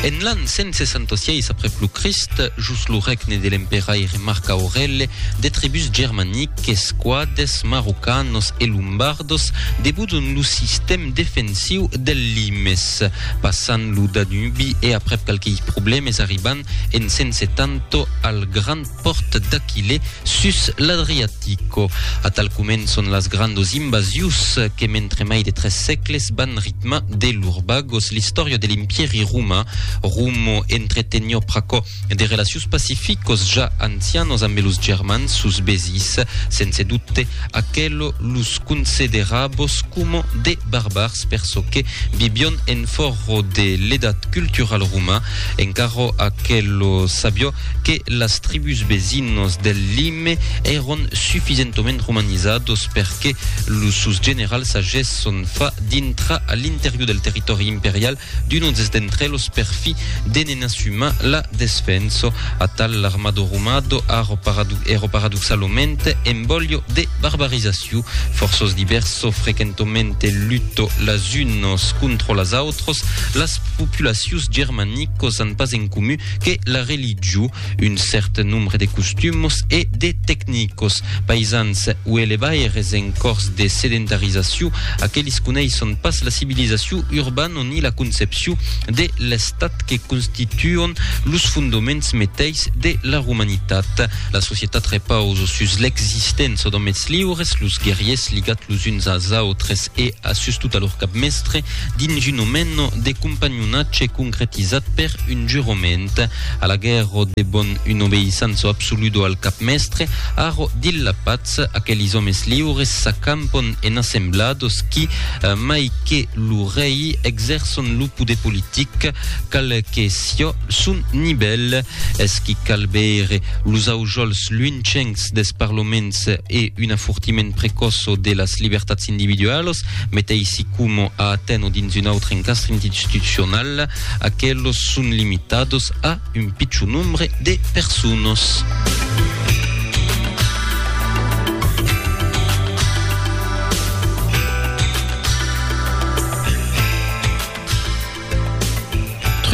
En l'an 166 aprèp lo Crist, jos lo règne de l'emperaire Marc Aurèle, de tribús germaniques, quades, marrocanos e lombardos, debudon lo sistèm defensiu del Limes, passant lo Danubi e aprèp qualquei problèmes arribant en 170 al Grand pòrt d'Aquilè sus l'Adriatico. Atal començon las grandos invasions que mentre mai de tres sègles van ritmar de lur bagos l'istòria de l'Impièri roman. Romo entretenió pr'aquò de relacions pacificos ja ancianos ambe los Germans sus Bezís. Sense dubte, aquelo los concederavos coma de barbars per çò que vivión en fòrro de l'edat culturala roma. En carro aquelo sabió que las tribús vesinos del Lime èron sufisentoment romanizados per que los sos generals agesson fa dintrar a l'interior del territòri imperial d'unos d'entre los per fi de ne n'assumar la desfenso. Atal l'armado romado arro èro paradoxaloment en bolho de barbarizaciu. Fòrços libers so frequentoment luto las unos contro las autres. autres, las populacions germanicos an pas en comu que la religion, un cèrt nombre de costumos e de tecnicos. Païsans o elevaires en cors de sedentarizacion, aquelis coneisson pas la civilizacion urbano ni la concepcion de l'estat que constituon los fondoments meteis de la romanitat. La societat repausa sus l'existença d'òmes liures, los guerriers ligats los uns als autres e a sustot a lor capmèstre dins un omeno de companhonatge concretizat per un jurament, a la guèrro de bon un obeïsanço absoludo al capmèstre, arro dil la patz, aquelis òmes liures s'acampon en assemblados qui, mai que lo rei, exèrçon lo poder politic, qual que sió son nivèl. Es qu'i cal veire los aujols lunchencs des parloments e un afortiment precòsso de las libertats individualas, meteissi coma a Aten o dins un autre encastre institucional, aquelos son limitados a un pichon nombre de personas.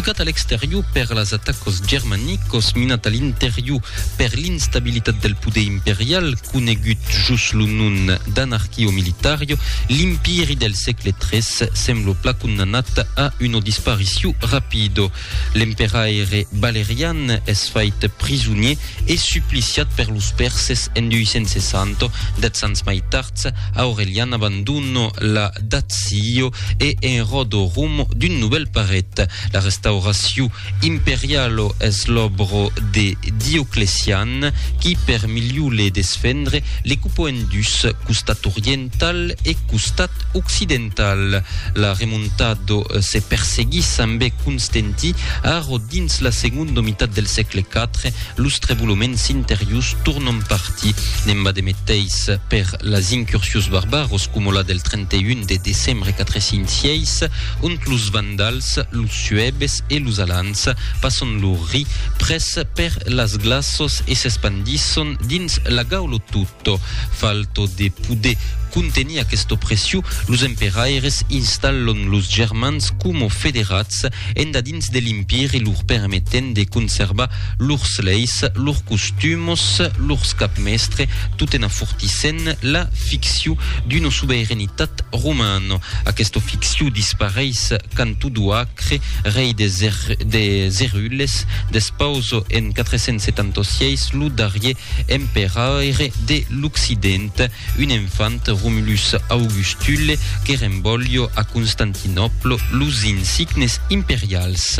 Trucat a l'exterior per las atacas germanicas, minat a l'interior per l'instabilitat del poder imperial, conegut jos lo nom d'anarquio militario, l'Impèri del sègle tres sembla plan condamnat a una disparicion rapida. L'emperaire Valerian es fait prisonier e supliciat per los Pèrses en 260, dètz ans mai tards, Aurelian abandona la Dacio e en ròda rumb d'un novèl paret. La restauracion imperiala es l'òbra de Dioclecian, qui per miliu le desfendre, le cupa en dus, costat oriental e costat occidental. Tal la remontado se perseguís sembé constenti, arro dins la segondo mitat del sègle IV, los treboloments interius tornon parti, n'emba de meteis per las incursions barbaros coma la del 31 de decembre 406, ont los vandals, los suebes e los alans passon lor ri pres per las glaços e s'espandisson dins la gaulotut. Tò falto de poder contenir aquesta opression, los emperaires installon los germans coma federats endadins de l'Empiri lor permetent de conservar lors leis, lors costumos, lors capmèstre, tot en afortissent la ficcion d'una sobeiranetat romana. Aquesta ficcion dispareis quand Odoacre, rei des Erules, despausa en 476 lo darrier emperaire de l'Occident, un enfant Romulus Augustule que renvòlio a Constantinòplo los insignes imperials.